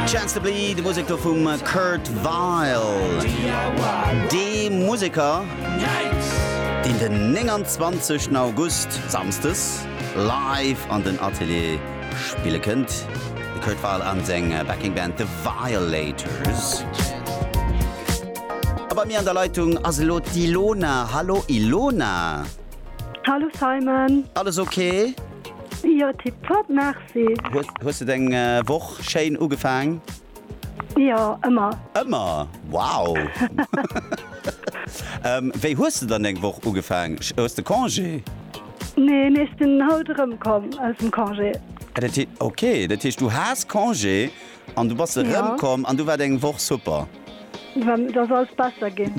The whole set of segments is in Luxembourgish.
Chance to Bleed, de Museker vum Kurt Vile. Dee Museker, deen den 29 August, Samsdes, live an den Atelier spille kënnt. De Kurt Vile a seng Backing Band The Violators. A bei mir an der Leitung ass elo d'Ilona. Hallo Ilona. Hallo Simon. Alles ok? Jo tip top merci. Hues de deng Woch schéin ugefaang? Jo ëmmer. Ëmmer? Wow! Wéi hues de dann deng Woch ugefaang? Hues de Congé? Nee, mee ech sinn haut erëmkomm aus dem Congé. Ah dat heescht, ok, dat heescht du has Congé An du bass erëmkomm an du waart eng Woch super. Dat ass alles besser ginn.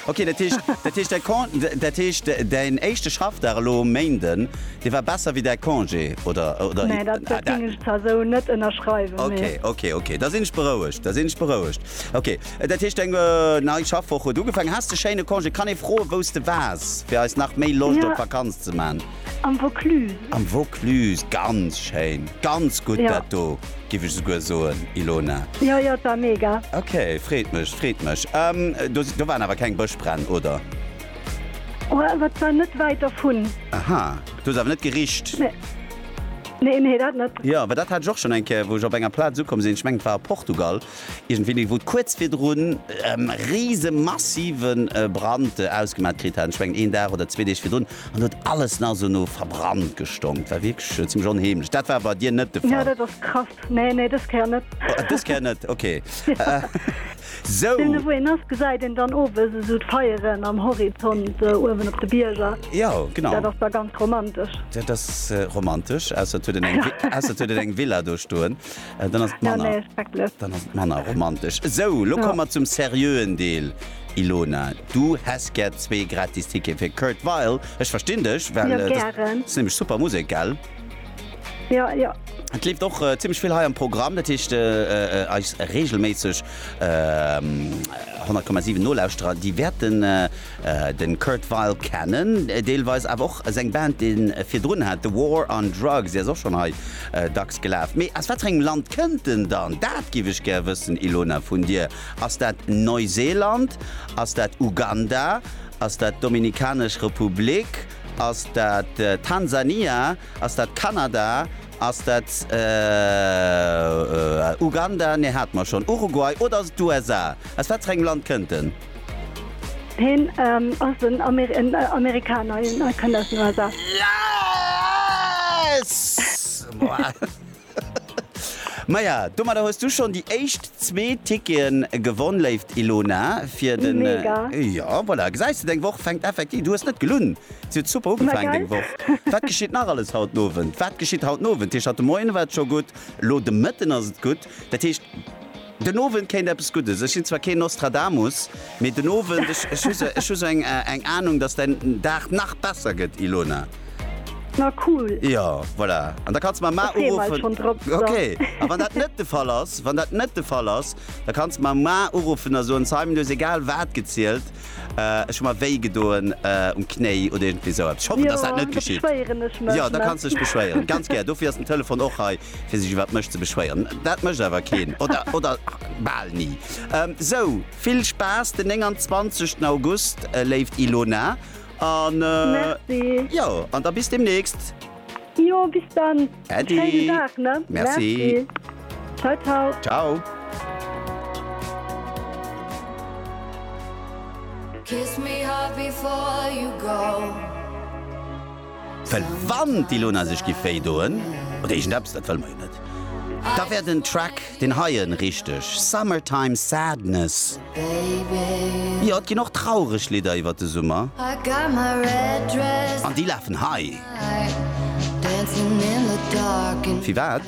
Okay, dat heescht, dat heescht däi Con, dat heescht däin éischte Schaffdag elo um Méinden, dee war besser wéi däi Congé, oder, oder? Nee, dat, dat géing ech zwar esou net ënnerschreiwen, nee. Okay, okay, okay, da sinn ech berouegt, da sinn ech berouegt. Okay, dat heescht eng nei Schaffwoch huet ugefaangen. Haas de schéine Congé? Kann ee froen, wou s de waars, fir eis nach méi Loscht op d'Vakanz ze man? Am Vaucluse. Am Vaucluse, ganz schéin, ganz gutt dat do giff ech souguer soen, Ilona. Jo, jo, et war mega. Ok, freet mech, freet mech. Do waren awer keng Bëschbränn, oder? Oh, awer et war net wäit dervun. Aha, du hues awer net gericht? Nee, nee, dat net. Jo, well dat hat ech och schonn eng Kéier, wou ech op enger Plaz ukomm sinn, ech mengen et war a Portugal iergendwéini, wou et kuerz virdrun e rise massive Brand ausgemat kritt hat, ech mengen een Dag oder zwee Deeg virdrun, An huet alles nach sou no verbrannt gestonkt. War wierklech zimmlech onheemlech. Dat war bei dir net de Fall? Jo, dat ass krass. Nee, nee, dës Kéier net. Dës Kéier net, ok. Sou. Wou een ass, gesäit een dann owes esou d'Feieren am Horizont uewen op de Bierger. Jo, genau. Dat ass da ganz romantesch. Dat ass romantesch, ausser et huet een eng, ausser et huet een eng Villa do stoen. Dann ass et manner, dann ass et manner romantesch. Sou, lo komme mer zum seriöen Deel. Ilona, du häss gär zwee gratis Tickete fir Kurt Weill. Ech verstinn dech, well dat ass nämlech super Musek, gell? Jo, jo. Et leeft och zimmlech vill hei am Programm, dat heescht eis reegelméisseg 100,7 Nolauschterer, déi wäerten de Kurt Weill kennen, deelweis awer och seng Band, déi en virdrun hat, The War on Drugs, déi ass och schonn hei dacks gelaf. Mee aus wat fir engem Land kënnt en dann? Dat giff ech gär wëssen, Ilona, vun dir. Ass dat Neuseeland? Ass dat Uganda? Ass dat d'Dominikanesch Republik? Ass dat Tansania? Ass dat Kanada? Ass dat Uganda? Nee, hate mer schonn. Uruguay? Oder ass et d'USA? Aus wat fir engem Land kënnt en? Hien ass en Amerikaner. Hien kënnt aus den USA. Yes! Maja, domadder hues du schonn déi éischt zwee Ticketen gewonn, léift Ilona, fir den, mega! Jo, voilà, gesäis de, deng Woch fänkt effektiv, du hues net gelunn, se huet super ugefaangen, deng Woch. Ma geil! Wat geschitt nach alles haut den Owend? Wat geschitt haut den Owend? Dat heescht, haut de Moien war et scho gutt, elo de Mëtten ass et gutt, dat heescht, Den Owend kéint eppes Guddes. Ech sinn zwar keen Nostradamus, mee den Owend, ech hu sou, ech hu sou eng Ahnung, dass däin Dag nach besser gëtt, Ilona. Na cool. Jo, voilà. An da kanns mer Mar uruffen. Da freeë mer eis schonn drop. Ok. A wann dat net de Fall ass, wann dat net de Fall ass, da kanns de mer Mar uruffen a soen, Simon, du hues egal wat gezielt, ech hu mer wéi gedoen um Knéi oder iergendwéi sou eppes. Ech hoffen, dass dat net geschitt. Jo, da beschwéieren ech mech. Jo, da kanns de dech beschwéieren. Ganz gär. Dofir ass den Telefon och hei. fir sech iwwer mech ze beschwéieren. Dat mécht awer keen oder oder bal ni. Sou vill Spaass den 29 August léift Ilona an jo an da bis demnächst. Jo bis dann. Äddi. Schéinen Dag ne. Merci. Ciao ciao. Ciao. Well wann d'Ilona sech giff wéi doen, oder iergend eppes, dat wëlle mer jo net, da wär den Track, deen heie richteg Summertime Sadness. Jo, et ginn och traureg Lidder iwwert de Summer, an déi lafen hei. Firwat?